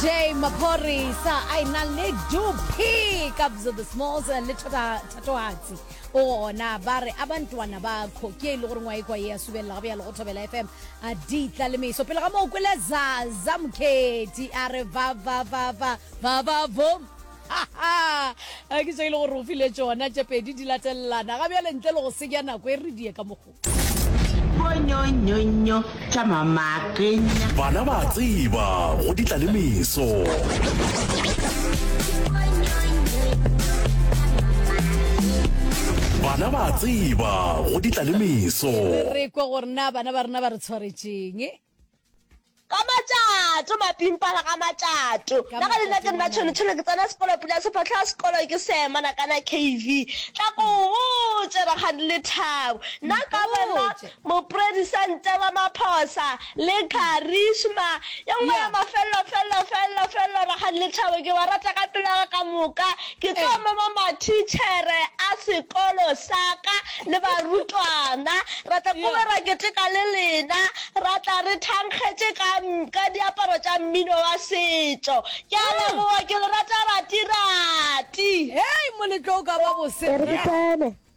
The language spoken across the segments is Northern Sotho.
Jay Maphorisa a ena le duphi kabzo the smalls le thota thatohatsi o gona ba re a bantwana ba khoki e le gore ngwa ekwa ya subelela ga bjalo go thobela fm a di tla le meso pele ga moo kwele zaza mokhethi a re va va va va va va vom a ke tso e le gore o file tsona tše pedi di latelelana ga bjale ntle le go senya nako e re die ka mogo bonyonyonyo tša mamakenya bana ba tseba go ditla le meso bana ba tseba go ditla le meso re kwa gore na bana ba rena ba re tshwaretšeng ka matšato mapimpana ka matšato na ga lena ke nna tshonetshone ke tsena sekolo pula sefatlha sekolo ke semana kana kv tla ko botse rakgadi le thabo nna ka bona moporedisente wa maphosa le charisma ye nngwe ya mafelelo felelo felelo felelo rakgadi le thabo ke ba rata ka pelaga ka moka Ke tlo mema mathitšhere a sekolo sa ka le barutwana. Ra tla ko be ra keteka le lena. Ra tla re thankgetše ka, ka diaparo tša mmino wa setšo. Ke a leboga, ke le rata rati-rati. Hei, moletlo o ka ba bose. E re ke tsene,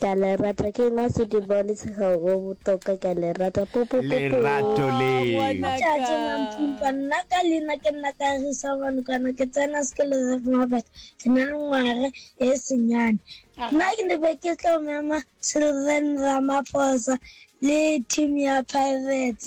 Ke a le rata ke nwa sediba le tshega go botoka ke a le rata po po po lerato leo Tšatši Mampimpa nna ka leina ke nna Kagiso Manokwane ke tsena sekolo sa Vumabet ke na le ngwaga e senyane nna ke ne be ke tlo mema Children Ramaphosa le team ya Pirates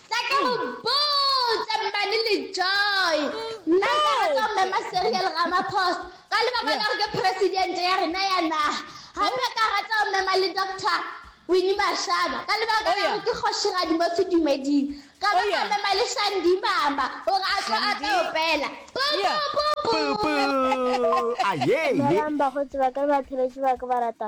Tla ke go botse mmane le joy nna ke rata go mema serial ramaphosa ka lebaka la gore ke presidente ya rena ya naga gape ka rata go mema le doctor wini mashaba ka lebaka la gore ke kgoshigadi mo sedumeding ka ba ka mema le shandi mama gore a tlo a tlo opela aye melang bakgotsi ba ka le batheletši ba ka ba rata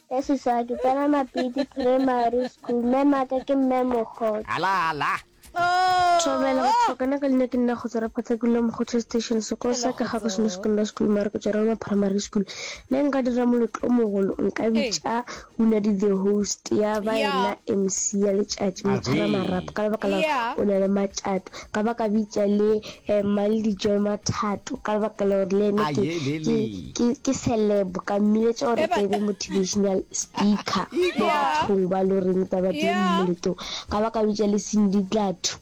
Ya seswa ke tsena Mapiti Primary School. Mmemaka ke Mme Mokgotho. Ala ala. Thobela, Batho ba kana ka leina ke nna Kgotso Ra Phathakula Mokgotho Station. Sekolo sa ka ga go seno Secondary School mare ke tšwa Roma Primary School. Ne nka dira moletlo o mogolo nka bitša Unadi the host ya ba yena MC ya letšatši Motshwara Marapo ka lebaka la gore o na le matšato. Ka ba ka bitša le Emma le dijo ma thato ka lebaka la gore le ene ke ke ke ke celeb ka mmiletša gore ke be motivational speaker mo bathong ba lo reng ba ba di mmoleto ka ba ka bitša le Cindy Dlathu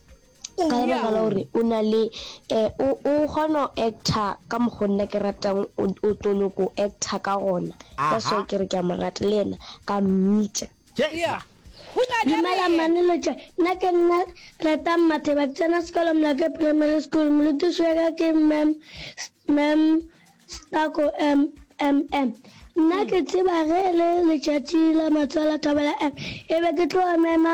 ka lebaka la gore o na le um o o kgona go actor ka mokgo nna ke ratang o o toloko actor ka gona that's why ke re ke a mo rata le ena ka mmitša Yeah. Dumela mane lotšwa nna ke nna Ratang Matheba ke tsena sekolo Molake Primary School molutiši weka ke Ma'am Ma'am Stako MMM nna ke tseba ge e le letšatši la matswalo Thobela M e be ke tlo mema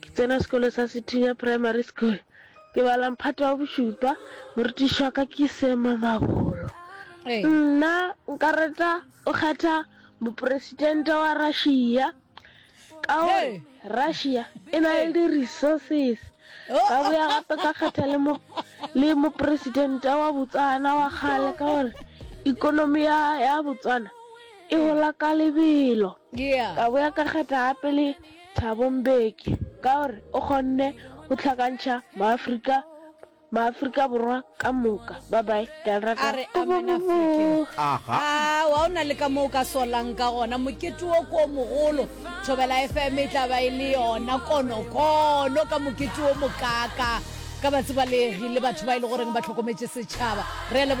Ke tsena sekolo sa Sethunya Primary School. Ke bala mphato wa bošupa. Morutiši wa ka ke Sema Mabolo. Nna nka reta o kgetha moporesidente wa Russia ka gore Russia e na le di-resources. Ka boya gape ka kgetha le mo le moporesidente wa Botswana wa kgale ka gore ikonomi ya ya Botswana e gola ka lebelo. Ka boya ka kgetha gape le Thabo Mbeki ka gore o kgonne go hlakantšha Maafrika Maafrika Borwa ka moka. Bye bye. Ke a le rata. A re amen African. Aha. Aa wa o na le ka mo o ka solang ka gona mokete wo ko o mogolo Thobela FM e tla ba e le yona konokono ka mokete wo mokaakaa ka batsebalegi le batho ba e le goreng ba tlhokometše setšhaba re a leboga.